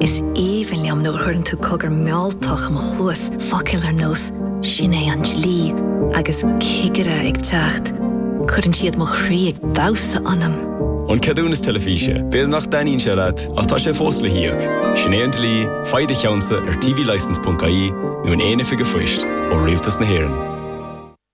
Is aoibhinn liom nuair a chuireann tú cogar mealltach i mo chluas, focail ar nós 'Sin é an dlí' agus 'Cigire ag teacht'. Cuireann siad mo chroí ag damhsa ionam. An ceadúnas teilifíse, b'fhéidir nach dtaitníonn sé leat ach tá sé fós le híoc. Sin é an dlí, faigh do cheannsa ar tvlicence.ie nó in aon oifig an phoist ó Rialtas na hÉireann.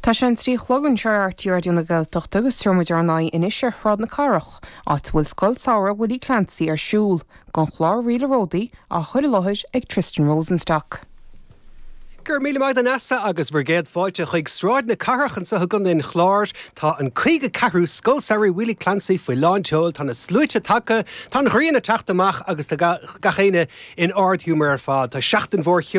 Tá sé a trí a chlog anseo ar RTÉ Raidió na Gaeltachta agus téann muid ar aghaidh anois ar Shráid na Cathrach, áit a bhfuil Scoil Samhraidh Willie Clancy ar siúl, don chlár Ríleanna Ródaí á chur i láthair ag Tristan Rosenstock. Go raibh míle maith agat a Neasa agus bhur gcéad fáilte chuig Sráid na Cathrach anseo i gContae an Chláir. Tá an 54ú Scoil Samhraidh Willie Clancy faoi lán tseoil, tá na sluaite tagtha, tá an ghrian ag teacht amach agus tá gach éinne in ard-ghiúmar ar fad. Tá seachtain mhór cheoil.